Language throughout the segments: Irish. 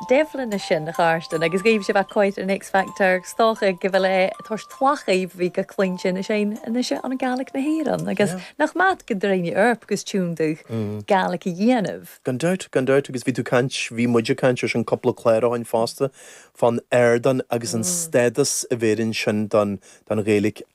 Devlin a sin, a Charsten, agus gaibh sibh a' coit an X Factor, is dócha go bhfuil é toisc tlath dhaoibh a bhí go cinnte ina sin, anois a an Gaelic na hÉireann, agus nach maith go dtroidhne Earp agus tiún do Gaelic a dhéanamh. Gan dabht, gan dabht, agus bhí tú caint, bhí muid a' caint ar sin cúpla clár ó shin fosta, fán ardán agus an stádas a bheireann sin don Ghaelic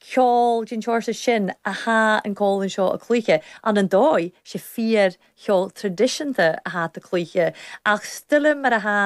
ceol den seórsa sin a thá an cómhlan seo a' cluiche, an an dóigh, 's e fíor cheol traidisiúnta a thá iad a' cluiche, ach stoilm mar a thá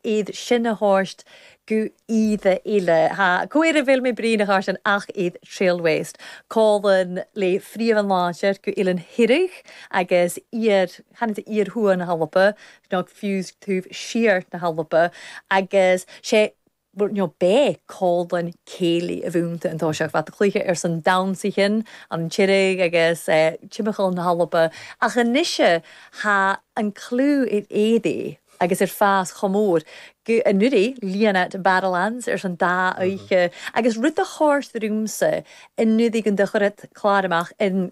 iad sin a thabhairt go h-íre eile. Thá caora bhéil mé brí na chairde ann ach iad Trail West. Cómhlan le fréamhan láidir go h-Oilean Thiriodh agus iar, chanadh tú iar thuaidh na h-Alba, nó fiú 's taobh siar na h-Alba, agus sé nó b' e cómhlan céilí a bh' ionnta an toiseach a' cluiche ar son dannsaichean an Tiriodh agus timcheall na h-Alba ach anois thá an clú ar éirí agus ar fás chomh mór go n-uraidh líon iad Barrowlands ar son dá oidhche agus rud do chórd riumsa an-uraidh gun do chuir iad clár amach ar an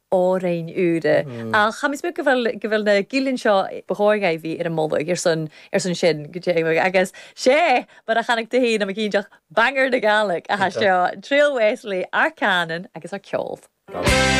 órain úra. Ach chaithfidh mé go bhfuil, go bhfuil na gillean seo ba chóir dhaibh a bheith ar am moladh ar son, ar son sin, go deimhin, agus sé mar a chanadh tú féin am cinnteach banger na Gealaigh a thá seo Trail West le ár cánan agus ár ceol.